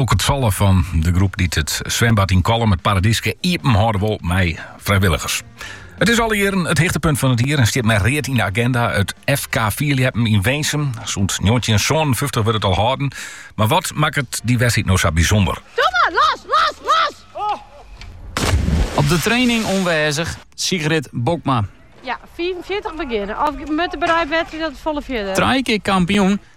Ook it sallen fan de groep dy't it swembad yn Kollum it Paradyske iepen hâlde wol mei frijwilligers. It is alle jierren it hichtepunt fan it jier en stiet mei read yn de agenda. It FK Fierljeppen yn Winsum. Sûnt njoggentjinhûndertsânenfyftich wurdt it al hâlden. Mar wat makket dy wedstriid no sa bysûnder? Op de training oanwêzich, Sigrid Bokma. Ja, 45 begjinne. Of moat de bereidwedstriid dat folle fierder? Trije kear kampioen,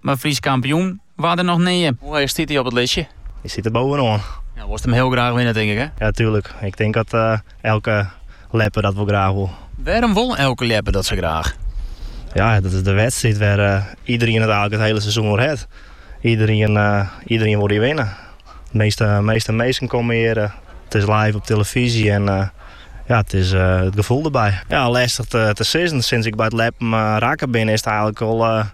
mar Frysk kampioen waard er noch nea. Hoe heech stiet hy op it listje? Hy stiet der bovenoan. Ja, wolst him hiel graach winne, tink ik, hè? Ja, tuerlik. Ik tink dat elke ljepper dat wol graach wol. Wêrom wol elke ljepper dat sa graach? Ja, dat is de wedstriid wêr iederien it eigenlijk it hiele seizoen oer hat. Iederien, iederien wol dy winne. De measte, measte minsken komme hjir. It is live op telefyzje en ja, it is it gefoel derby. Ja, lestich te, te sizzen. Sinds ik by it ljeppen rekke bin, is it eigenlijk al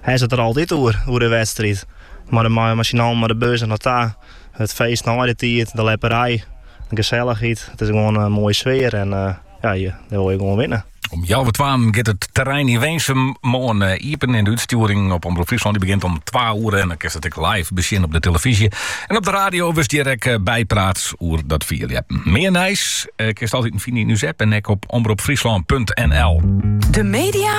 Hast it der altyd oer, oer de wedstriid. Mei de mei syn allen, mei de bus dernei ta. It feest nei de tiid, de ljepperij, de gesellichheid. It is gewoan in moaie sfear en ja, hjir wol je gewoan winne. Om healwei twaen giet it terrein yn Winsum moarn iepen en de útstjoering op Omrop Fryslân begjint om twa oere. En dan kinst it ek live besjen op de telefyzje en op de radio. Wurdst hjir ek bypraat oer dat fierljeppen. Mear nijs kinst altiten fine yn ús app en ek op omropfryslân.nl. De media